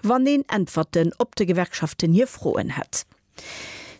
wann een Äntwerten op de Gewerkschaften hir Froen hätt.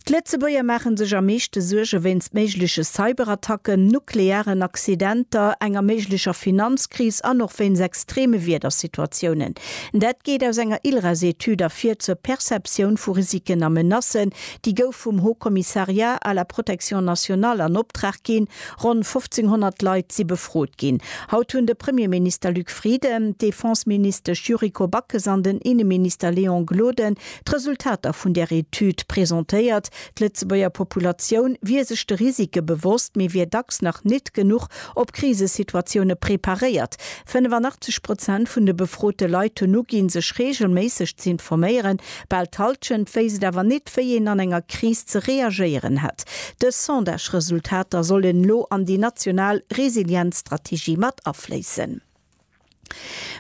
D'Lëtzebuerger maache sech am meeschte Suerge wéinst méigleche Cyberattacken, nuklearen Accidenter, enger méiglecher Finanzkris an och wéinst extreme Wiedersituatiounen. Dat geet aus enger ILRAS-Etüd ervir zur Perceptioun vu Risiken a Menacen. Déi gouf vum Haut Commissariat à la protection nationale an Optrag ginn. Ronn 1.500 Leit si befrot ginn. Haut hunn de Premierminister Luc Frieden, d'Defenseministesch Yuriko Backes an den Inneminister Léon Gloden d'Resultater vun där Etüd presentéiert. D'Lëtzebuerger Populatioun wier sech de Risike bewosst, mee wier dacks nach nit genuch op Krisesituatioune preparéiert. 85 Prozent vun de befrote Leit hunn uginn, sech reegelméisseg z'informéieren, Bal d'Halschent wéisst et awer nit, wéi een an enger Kris ze reagéieren hätt. Dës Sondage-Resultater sollen elo an déi national Resilienzstrategie mat afléissen.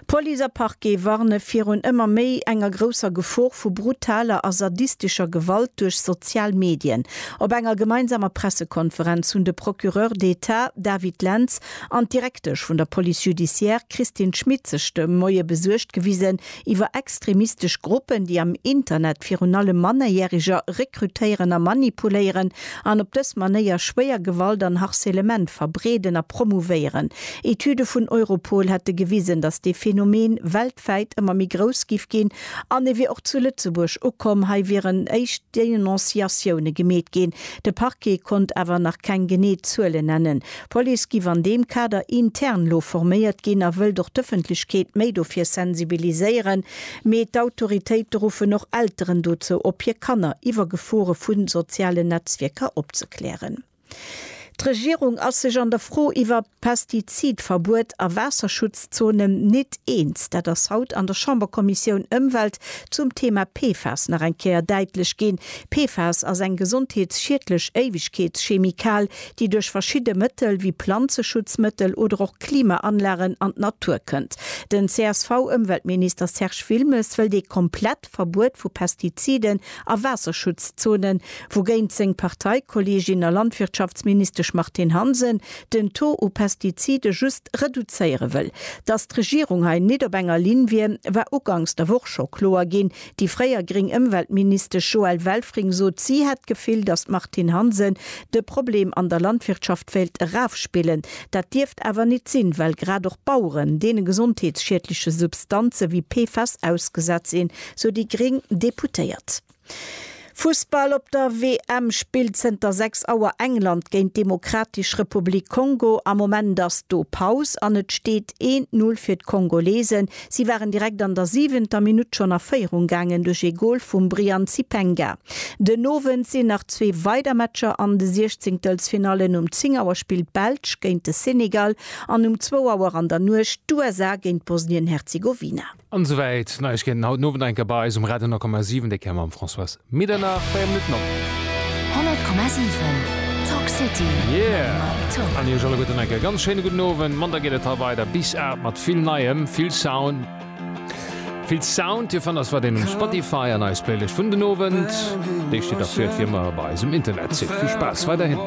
Police a Parquet warne virun ëmmer méi enger grousser Gefor vu brutaler a sadistescher Gewalt duerch sozial Medien. Op enger gemeinsamer Pressekonferenz hunn de Procureur d'Etat David Lentz an d'Direktesch vun der Police judiciaire Christine Schmit sech de Moie besuergt gewisen iwwer extremistesch Gruppen, déi am Internet virun allem Mannerjäreger rekrutéieren a manipuléieren an op dës Manéier schwéier Gewalt an Harcèlement verbreeden a promouvéieren. Etüde vun Europol hätte gewisen, datt dee Phänomen weltwäit ëmmer méi grouss giff ginn an e wier och zu Lëtzebuerg ukomm. Hei wieren éischt Denonciatioune gemeet ginn. De Parquet konnt awer nach keng genee Zuele nennen. D'Police giff an deem Kader intern lo forméiert ginn a wëllt och d'Ëffentlechkeet méi dofir sensibiliséieren. Mee d'Autoritéite ruffen och Elteren dozou op, hir Kanner iwwer Gefore vu sozialen Netzwierker opzeklären. D'Regierung ass sech an der Fro iwwer Pestizidverbuet a Waasserschutzzonen nit eens. Dat ass haut an der Chamberkommissioun Ëmwelt zum Thema PFAS nach eng Kéier däitlech ginn. PFAS ass eng gesondheetsschiedlech Éiwegkeetschemikal, déi duerch verschidde Mëttel wéi Planzeschutzmëttel oder och Klimaanlagen an d'Natur kënnt. Den CSV-Ëmweltminister Serge Wilmes wëllt ee komplett Verbuet vu Pestiziden a Waasserschutzzonen, wougéint seng Parteikolleegin a Landwirtschaftsministesch Martine Hansen den Taux u Pestizide just reduzéiere wëll. Datt d'Regierung hei nit op enger Linn wier, war uganks der Woch scho kloer ginn, Déi fréier gréng Ëmweltministesch Joëlle Welfring sot, si hätt d'Gefill, datt d'Martine Hansen de Problem an der Landwirtschaft wéilt erafspillen. Dat dierft awer nit sinn, well grad och Baueren deene gesondheetsschiedleche Substanze wéi PFAS ausgesat sinn, sou déi gréng Deputéiert. Fussball Op der WM spillt zënter 6 Auer England géint d'Demokratesch Republik Kongo. Am Moment ass do Paus an et steet een d'Null fir d'Kongolesen. Si waren direkt an der siwenter Minutt schonn a Féierung gaangen duerch ee Gol vum Brian Zipenga. Den Owend sinn nach zwee weider Matcher an de Siechzéngtelsfinallen, um 10 Auer spillt d'Belsch géint de Senegal an um zwou Auer an der Nuecht d'USA géint Bosnien-Herzegowina. An souwäit Neiegkeeten haut den Owend enker bei eis um Radio 10,7, déi kéier mam Françoise Middernach 4 Minutten op. 100,7 Talk City Yeah an iech alleguerten enke ganz schéine gudden Owend. Mann da geet et hei weider bis 8 mat vill Neiem, vill Sound, vill Sound. Dir fannt eis weiderhin um Spotify an eis Playlëscht vun den Owend, déi steet da fir fir ëmmer bei eisem Internetsite. Vill Spaass weiderhin.